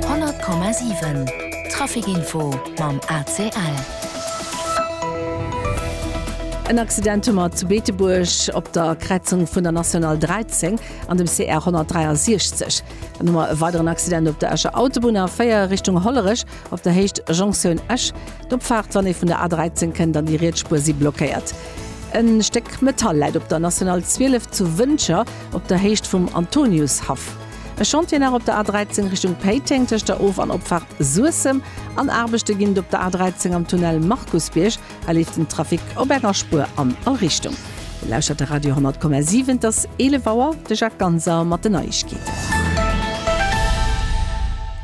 100,7 Trafic Info mam ACL. En Accident hu mer zu Beetebuerg op der Kräizung vun der National 13 an dem CR 163. Dann hu mer e weideren Accident op der Escher Autobunn, A4 Richtung Hollerech, op der Héicht Jonction Esch. D'Opfaart, wann ee vun der A13 kënnt, an déi Rietsspuer si blockéiert. E Stéck Metall läit op der National 12 zu Wëncher op der Héicht vum Antoniushaff. E Chantier nach op der A13 Richtung Péiteng tëscht der Of an Opfaart Suessem an Aarbechte ginn et op der A13 am Tunnel Markusbierg. Hei leeft den Trafic op enger Spuer an all Richtung. Dir lauschtert de Radio 10,7. Et ass 11 Auer. De Jacques Ganser mat den Neiegkeeten.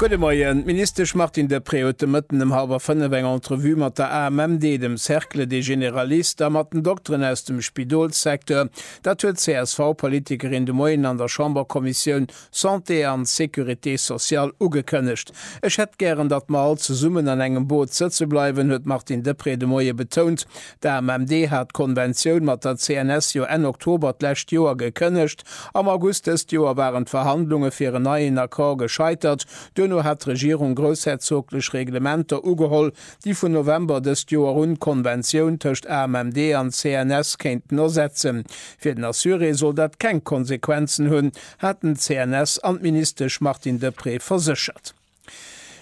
Gudde Moien. D'Ministesch Martine Deprez huet de Mëtten ëm hallwer fënnef eng Entrevue mat der AMMD, dem Cercle des Généralistes a mat den Dokteren aus dem Spidolssecteur. Dat huet d'CSV-Politikerin de Moien an der Chamberkommissioun Santé an Sécurité sociale ugekënnegt. Ech hätt gären, datt mer all zesummen an engem Boot sëtze bleiwen, huet d'Martine Deprez de Moie betount. D'AMMD hat d'Konventioun mat der CNS jo Enn Oktober d'lescht Joer gekënnegt. Am August dëst Joer waren d'Verhandlunge fir en neien Accord gescheitert. Duerno hat d'Regierung groussherzoglech Reglementer ugeholl, déi vun November dëst Joer un d'Konventioun tëscht AMMD an CNS kéinten ersetzen. Fir den Assuré soll dat keng Konsequenzen hunn, haten d'CNS an d'Ministesch Martine Deprez verséchert.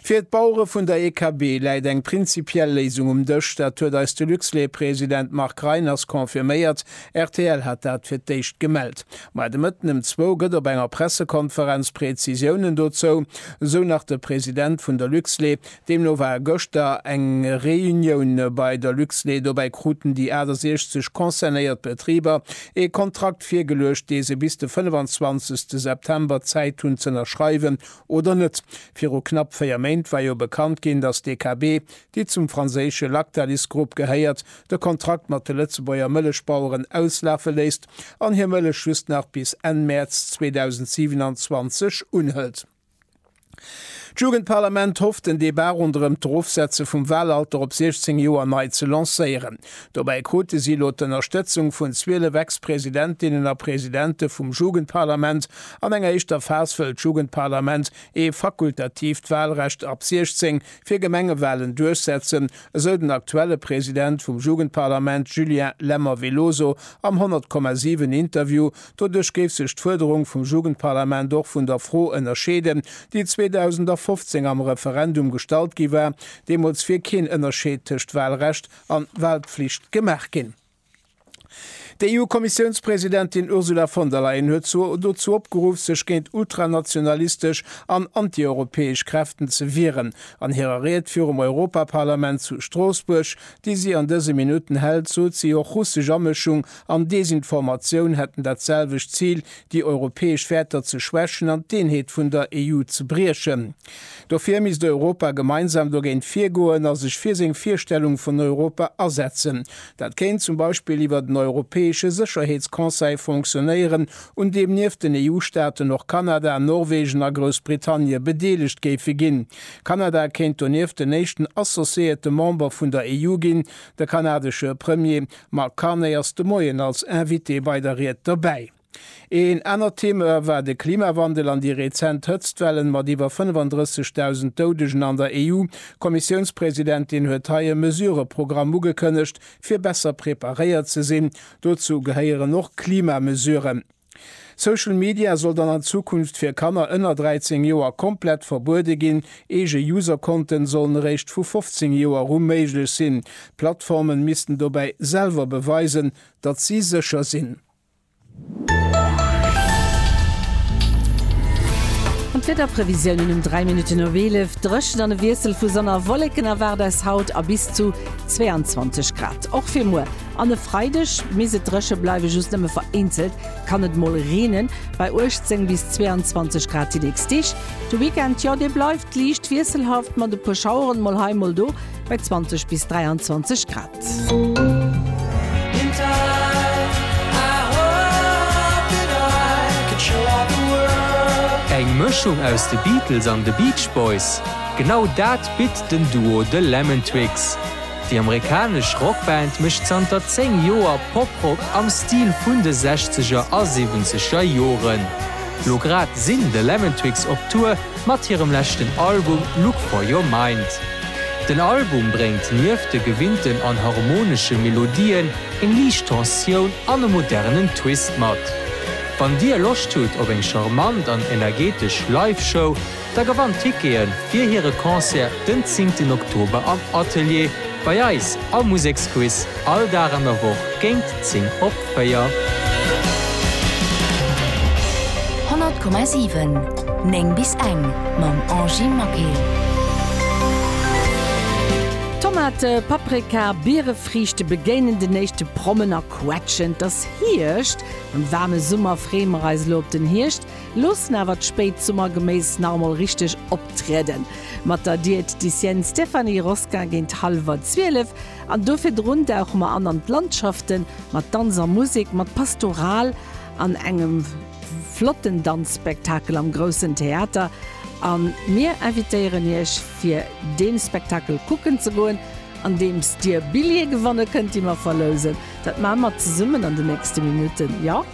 Fir d'Bauere vun der EKB läit eng prinzipiell Léisung um Dësch. Dat huet eis de Luxlait-President Marc Reiners confirméiert. Rtl hat dat fir d'éischt gemellt. Ma de Mëtten ëm zwou gëtt op enger Pressekonferenz Prezisiounen dozou, sou nach de President vun der Luxlait, Deemno war gëschter eng Reunioun bei der Luxlait. Dobäi kruten déi 68 concernéiert Betriber ee Kontrakt virgeluecht, dee se bis de 25 September Zäit hunn z'ënnerschreiwen oder net. Viru knapp 4 Méint war jo bekannt ginn, datt d'DKB, déi zum franséische Lactalis-Grupp gehéiert, de Kontrakt mat de Lëtzebuerger Mëllechbaueren auslafe léisst an hir Mëllech just nach bis Enn Mäerz 2027 unhëlt. D'Jugendparlament hofft den Debat ronderëm d'Erofsetze vum Wahlalter op 16 Joer nei ze lancéieren. Dobäi krute si elo d'Ënnerstëtzung vun 12 Ex-Presidentinnen a Presidente vum Jugendparlament. An enger éischter Phas wëll d'Jugendparlament ee fakultatiivt Wahlrecht ab 16 fir Gemengewahlen duerchsetzen, esou den aktuelle President vum Jugendparlament Julien Lemmer-Veloso am 100,7 Interview. Doduerch géif sech d'Fuerderung vum Jugendparlament och vun der Fro ënnerscheeden, déi 2015 am Referendum gestallt gi war. Deemools wier keen Ënnerscheed tëscht Walrecht an Walpflicht gemaach ginn. D'EU-Kommissiounspresidentin Ursula von der Leyen huet zwar dozou opgeruff, sech géint ultranationalistesch an antieuropäesch Kräften ze wieren. An hirer Ried virum Europaparlament zu Stroossbuerg, déi si an dëse Minutten hält, sot si och russesch Amëschung an Desinformatioun hätten dat selwecht Zil, déi europäesch Wäerter ze schwächen an d'Eenheet vun der EU ze briechen. Dofir misst Europa gemeinsam dogéint virgoen a sech fir seng Virstellung vun Europa asetzen. Dat kéint zum Beispill iwwert en europäesche Sécherheetsconseil fonctionnéieren, un deem nieft den EU-Staaten och Kanada, Norwegen a Groussbritannie bedeelegt géife ginn. Kanada kéint donieft den éischten associéierte Member vun der EU ginn. De kanadesche Premier Marc Carné ass de Moien als Invité bei der Ried dobäi. Een anert Thema war de Klimawandel an déi rezent Hëtztwellen mat iwwer 35.000 Doudegen an der EU. D'Kommissiounspresidentin huet hei e Mesureprogramm ugekënnegt, fir besser preparéiert ze sinn. Dozou gehéieren och Klimamesuren. Social Media soll dann an Zukunft fir Kanner ënner 13 Joer komplett verbuede ginn. Eege Userkonten sollen eréischt vu 15 Joer u méiglech sinn. D'Plattformen missten dobäi selwer beweisen, datt si sécher sinn. An d'Wiederprevisiounen um 3 Minutten of 11, Dréchent an e Wiessel vu Sonn a Wolleken erwaart eis haut a bis zu 22 Grad och fir muer. An e Freideg misst et dréche bleiwen, just nëmme vereenzelt kann et mol reenen, bei 18 bis 22 Grad déi nächst Deeg. De Weekend, jo, dee bleift liicht wiesselhaft mat e puer Schaueren mol hei mol do, bei 20 bis 23 Grad. Eng Mëschung aus de Beatles an de Beach Boys, genau dat bitt den Duo The Lemon Twigs. Déi amerikanesch Rockband mécht zanter 10 Joer Poprock am Stil vun de Sechzeger a Siwwenzeger Joren. Lo grad sinn The Lemon Twigs op Tour mat hirem leschten Album Look For Your Mind. Den Album bréngt nieft de gewinnten an harmonesche Melodien eng liicht Tensioun an e modernen Twist mat. Wann Dir Loscht hutt op eng charmant an energetesch Live-Show, Da gewannt Tickete fir hire Concert den 10 ten Oktober am Atelier bei eis am Museksquiz, all Dag an der Woch géint 10 op 4. 100,7 9 bis eng mam Angy Maquet. Tomate, Paprika, Bierefriichte begéinen den éischte Prommen a quetschen, 't ass Hierscht, am waarme Summer freeë mer eis elo op den Hierscht, Loossen awer d'spéit Summergeméis nach emol richteg optrieden. Mat der Diätdicienne Stéphanie Rosquin géint hallwer 12 an do virdrun dauche mer an an d'Landschaften mat Danz a Musek mat Pastoral an engem flotten Danzspektakel am Groussen Theater an mir invitéieren iech fir dee Spektakel kucken ze goen andeems dir Billje gewanne kënnt déi mer verlousen. Dat maan mer zesummen an den nächsten Minuten, jo?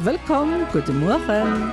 Wëllkomm, gudde Mueren.